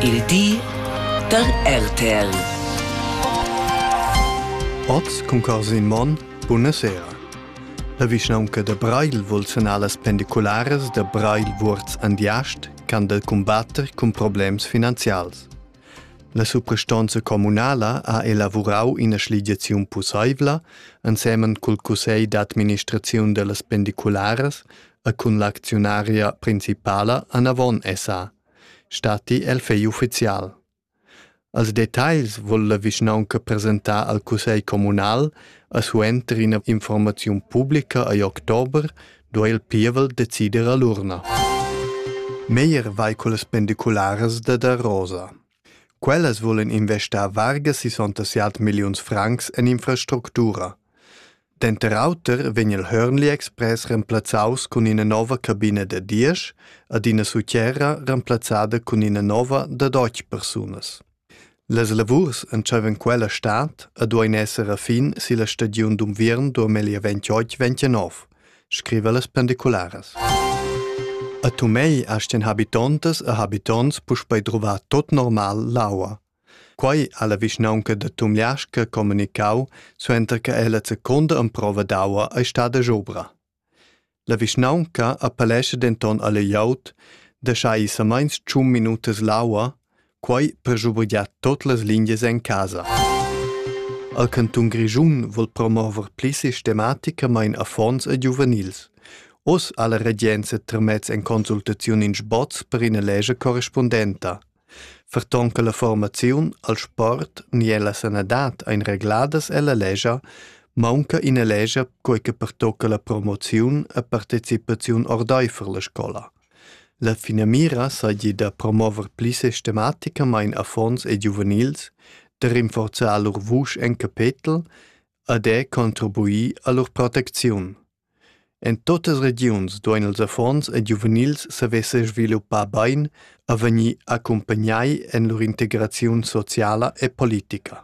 Il di da RTL. Oz cun casa in mon, buna sera. La vischnaunca da Breil vul sanar las pendicularas da Breil Vuorz Andiast can del combatter cun problems finanzials. La suprastonza communala ha elavurau ina schligiaziun pusseivla, ensemen cul cussegl d'administraziun dellas pendicularas, e cun l'acziunaria principala anavon esa stati el fegl ufficial. Als detagls vul la vischnaunca presentar al cussegl communal a suenter ina informaziun publica agl october duei il pievel decider a l'urna. Meyer vai con las pendicularas da da Rosa. Quellas vulan investar varga 67 milliuns francs en infrastructura. Denter auter vegn il Hörnli Express remplazzaus cun ina nova cabina da diesch ed ina sutgera remplazzada cun ina nova da deutsch persunas. Las lavurs entscheivan quella stad e duein esser a fin silla stagiun d'unviern 2028-29. scriva las pendicularas. A Tumei astin habitontas e habitonts puspei drova tot normal l'aua. Quei ha la vischnaunca da Tumliasca comunicau suenter che ella secunda emprova d'aua ei stada jobra. La vischnaunca appellescha denton alle Jaut da schai sameins tschun minutas l'aua Quai per schubergiar tot las lingias en casa. Al cantun Grischun vul promover pli sistematicamain affons e giuvenils. Oz ha la regenza tramez en consultaziun in sboz per ina legge correspondenta. Ferton che la formaziun al sport ni alla sanadad ein regladas ella legia, maunca ina legia quei che pertocca la promoziun e partecipaziun ordeifer la scola. La finamira seigi da promover pli sistematicamain affons e giuvenils, da rinforzar lur vusch en capetel e da contribuir a lur protecziun. En tuttas regiuns duein ils affons e giuvenils saver sesviluppar bein e vegnir accumpagnai en lur integraziun sociala e politica.